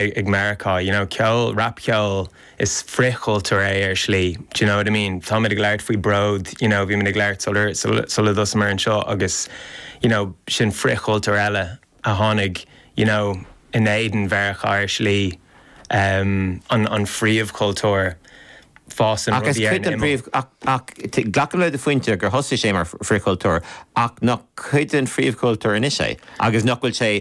ag Meiriceá, you know, ceol, rapcheol, is frithchultúr é ar shlí, d'you know what I mean? Táimid ag labhairt faoi Bród, you know, bhímid ag labhairt sular, sula dtosaíomar anseo agus, you know, sin frithchultúr eile a tháinig, you know, in éadan Mheiriceá ar shlí, em, an, an phríomhchultúr, fásann rudaí ar an imeall. Ach is cuid den bpríomh, ach, ach, t', glacaim le do phointe gur thosaigh sé mar fhrithchultúr ach nach cuid den phríomhchultúr anois é agus nach bhfuil sé,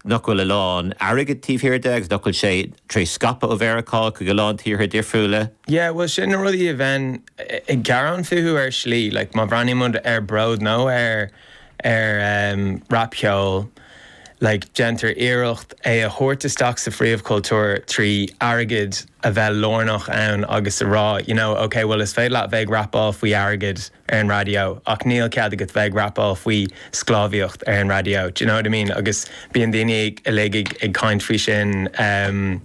nach bhfuil a lán airgid taobh thiar de agus nach bhfuil sé tar éis scaipeadh ó Mheiriceá chuig a lán tíortha difriúla. Yeah, bhuel sin na rudaí a bheinn ag gearán fúthu ar shlí, like má bhreathnaímid ar Bród nó ar ar em rapcheol like déantar iarracht é a thabhairt isteach sa phríomhchultúr trí airgead a bheith lárnach ann agus a rá you know, okay bhuel is féidir leat a bheith ag rapáil faoi airgead, ar an raidió ach níl cead agat bheith ag rapáil faoi sclábhaíocht ar an raidió d'you know what I mean agus bíonn daoine uilig ag caint faoi sin em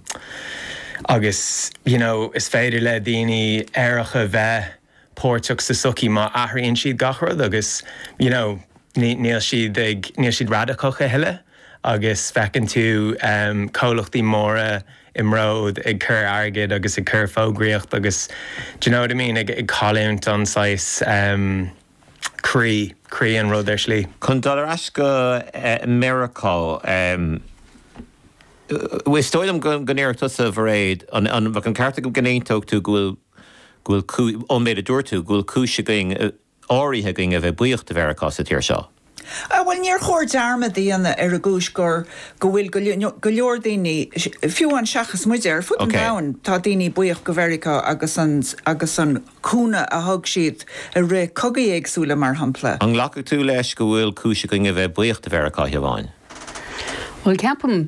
agus you know is féidir le daoine aeracha a bheith páirteach sa sochaí má athraíonn siad gach rud agus you know níl siad ag níl siad radacach a thuilleadh agus feiceann tú em comhlachtaí móra you i mBród, ag cur airgid agus ag cur fógraíocht agus d'you know what I mean ag cailliúint an saghas em croí, croí an rud ar slí. Chun dul ar ais go Meiriceá em is dóigh liom go ndéarfadh tusa a Mhairéad, an bheadh an ceart agam go n-aontófá go bhfuil go bhfuil cúis ón méid a dúirt tú go bhfuil cúis againn eh, áirithe againn a bheith buíoch de Mheiriceá sa tír seo. Bhuel, níor chóir dearmad a dhéanamh ar an gcúis gur, go bhfuil go leor daoine, fiú amháin seachas muide, ar fud an domhain, tá daoine buíoch de Mheiriceá agus an, agus an cúnamh a thug siad i rith cogaí éagsúla mar shampla. An nglacfaidh tú leis go bhfuil cúis againn a bheith buíoch de Mheiriceá, a Shiobhán? Bhuel, ceapaim,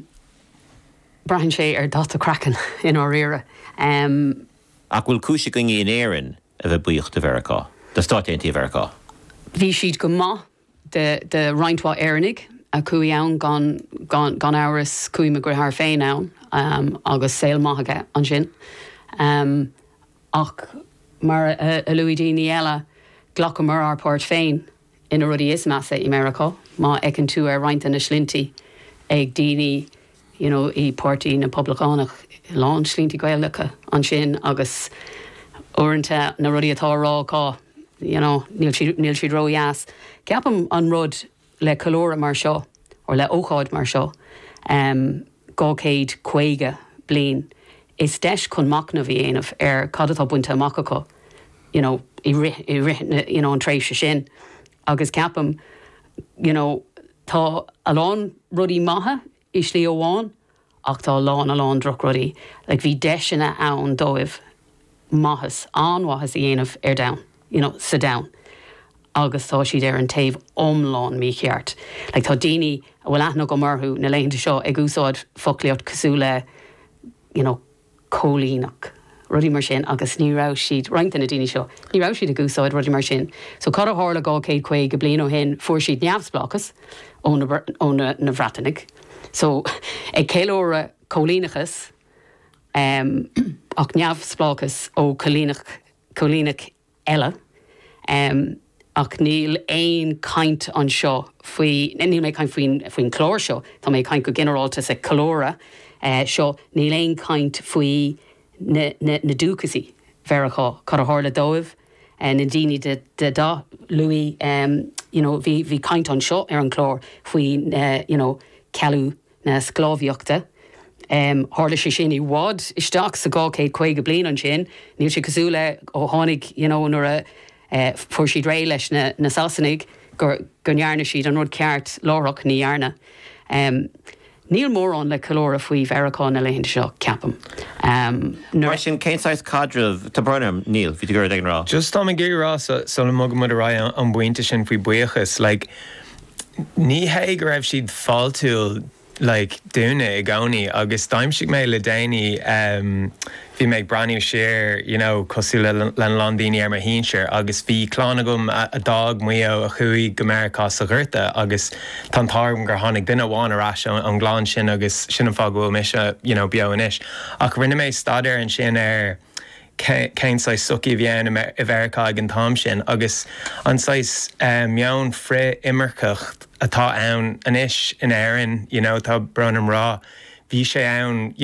braitheann sé ar dhath do chraicinn, i ndáiríre. Ach bhfuil cúis againne in Éirinn a bheith buíoch de Mheiriceá, de Stáit Aontaithe Mheiriceá. Bhí siad go maith do roinnt mhaith Éireannaigh a chuaigh ann gan, gan, gan amhras chuaigh mo dheartháir féin ann agus saol maith aige ansin. Ach mar a luaigh daoine eile, ghlacamar ár páirt féin. sna rudaí is measa i Meiriceá má fheiceann tú ar roinnt de na sloinnte ag daoine you know i Páirtí na bPoblachtánach a lán sloinnte Gaelacha ansin agus uaireanta na rudaí atá á rá acu you know níl siad níl siad ródheas. Ceapaim an rud le ceiliúradh mar seo or le ócáid mar seo eh 250 bliain is deis chun machnamh a dhéanamh ar cad atá bainte amach acu you know i rith i rith na you know an tréimhse sin agus ceapaim you know tá a lán rudaí maithe i slí amháin ach tá a lán a lán drochrudaí like bhí deiseanna ann dóibh maitheas an-mhaitheas a dhéanamh ar domhan you know sa domhan agus tá siad ar an taobh iomlán mícheart. Like, tá daoine a bhfuil aithne agam orthu na laethanta seo ag úsáid foclaíocht cosúil le you know coilíneach, rudaí mar sin agus ní raibh siad, roinnt de na daoine seo, ní raibh siad ag úsáid rudaí mar sin. So cad a tharla dhá chéad caoga bliain ó shin, fuair siad neamhspleáchas ó na, ó na, na Breatanaigh. So ag ceiliúradh coilíneachas em, ach neamhspleáchas ó coilíneach, coilíneach eile. Ach níl aon chaint anseo faoi, níl mé ag caint faoin chlár seo, tá mé ag caint go ginearálta sa cheiliúradh seo, níl aon chaint faoi na dúchasaigh Mheiriceá, cad a tharla dóibh, na ndaoine de dhath luaigh you know bhí caint anseo ar an chlár faoi you know cealú, na sclábhaíochta. Tharla sé sin i bhfad isteach sa 250 bliain ansin. Níl sé cosúil le ó tháinig, you know, nuair a fuair siad réidh leis na Sasanaigh go ndearna siad an rud ceart láithreach, ní dhearna. Níl mórán le ceiliúradh faoi Mheiriceá na laethanta seo, ceapaim. Mar sin, cén saghas caidrimh, tá braithim, níl, bhí tú ag iarraidh ag a rá. Just, táim ag iarraidh a rá, sula mbogaimid ar aghaidh an bpointe sin faoi buíochas, like, Ní hé go raibh siad fáiltiúil like dúinne i gcónaí agus d'aimsigh mé le déanaí em bhí mé ag breathnú siar you know cosúil le lena lán daoine ar mo shinsir agus bhí clann agam a a d'fhág Maigh Eo a chuaigh go Meiriceá sa ghorta agus tá an t-ádh orm gur tháinig duine amháin ar ais ón ón gclann sin agus sin an fáth go bhfuil mise you know beo anois ach rinne mé staidéar ansin ar cén saghas sochaí a bhí ann i Meiriceá ag an t-am sin agus an saghas meon frith-imirceach atá ann anois in Éirinn, you know tá brón orm a rá, bhí sé ann, you know.